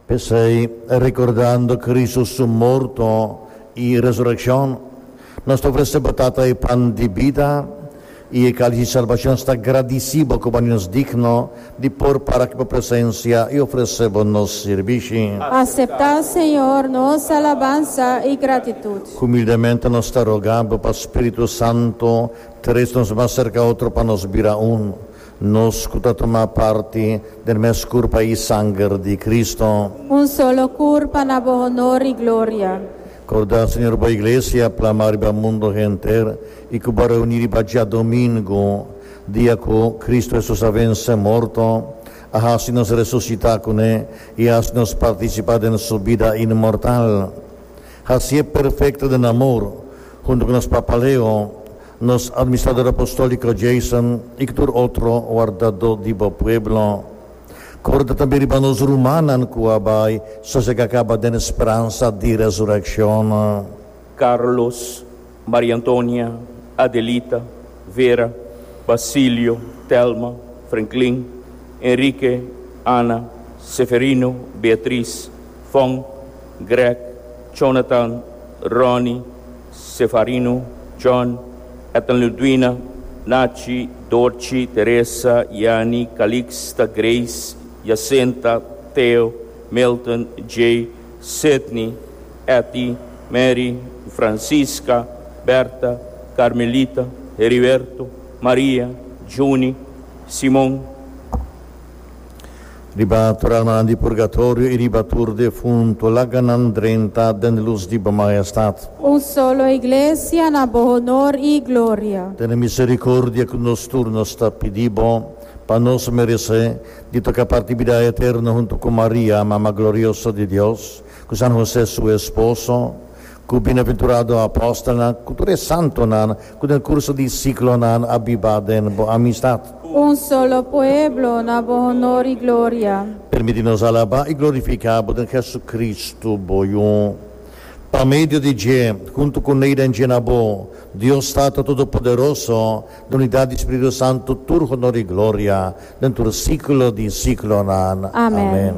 P'esei, rekordando Kristu su morto i resurekshon, nos ta ofresé bo Tata e pan di bida i e kalis di salbashon. Sta gradisí bo ku bo handi nos digno di por para ku bo presensia i ofresé bo nos sirbishi. Aseptá, Señor, nos alabansa i gratitut. Humildemente nos ta rogá bo pa Spiritu Santu tres nos mas serka otro pa nos bira un. Nos cu ta tuma parti den mes curpa y sanger di Cristo. Un solo curpa na bo honor y gloria. Corda, Señor, bo Iglesia plama riba mundo henter y cu bo reuni riba djadomingo, dia cu Cristo Hesus a vence morto, a haci nos resucita cu ne y a haci nos participa den su bida inmortal. Hacié perfecto den amor, hunto cu nos Papa Leo, Nos Administrador Apostolico Jason y tur otro wardado diba pueblo. Corda tambe riba nos rumannan cu a bay sosega caba den speransa di resurreccion. Carlos, Maria Antonia, Adelita, Vera, Basilio, Telma, Frenklin, Enrique, Ana, Seferino, Beatriz, Fong, Greg, Chonatan, Ronny, Sefarino, John, Ethan Ludwina, Nachi, Dorchi, Teresa, Yani, Calixta, Grace, Jacinta, Theo, Milton, Jay, Sidney, Etty, Mary, Francisca, Berta, Carmelita, Heriberto, Maria, Junie, Simon. Riba turanan di purgatorio i riba tur defuntu laga nan drenta den lus di bo Majestad. Un solo Iglesia na bo honor i gloria. Tene misericordia cu nos tur. Nos ta pidi bo pa nos merece di toca parti bida eterno hunto cu Maria, Mama glorioso di Dios, cu San Jose su esposo, Ku bienaventurado apostelnan ku tur e santonan ku den kurso di siklonan a biba den bo amistat. Un solo pueblo na bo honor i gloria. Permití nos alabá i glorifiká bo den Hesukristu, bo Yu. Pa medio di dje, huntu ku Neida en djena bo, Dios Tata Todopoderoso, den unidat di Spiritu Santu tur honor i gloria den tur siklo di siklonan. Amèn.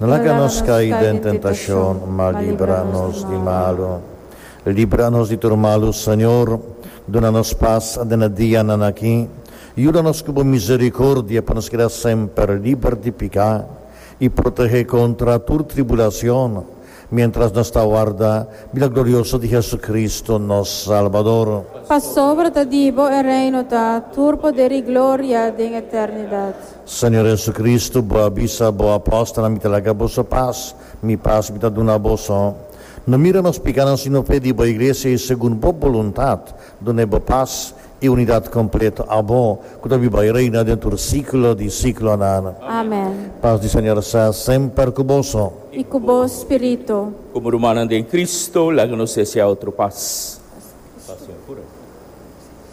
No laga nos kai den tentashon, ma libra nos di malu. Libra nos di tur malu, Señor. Duna nos pas den e dianan aki. Yuda nos ku bo misericordia pa nos keda semper liber di piká i protehé kontra tur tribulacion, mientras nos ta warda bida glorioso di Jesucristo, nos Salbador. Pasobra ta di bo e reino ta tur poder i gloria den eternidad. Señor Jesucristo, Bo a bisa Bo apóstolnan, Mi ta laga boso pas, Mi pas Mi ta duna boso. No mira nos pikánan, sino fe di Bo Iglesia, i segun Bo boluntat, duna e Bo pas i unidat kompleto. A Bo, ku ta biba i reina den tur síkulo di síkulonan. Amén. Pas di Señor sa semper ku boso. I ku bo spiritu. Komo rumannan den Cristo, laga nos hesé a otro pas.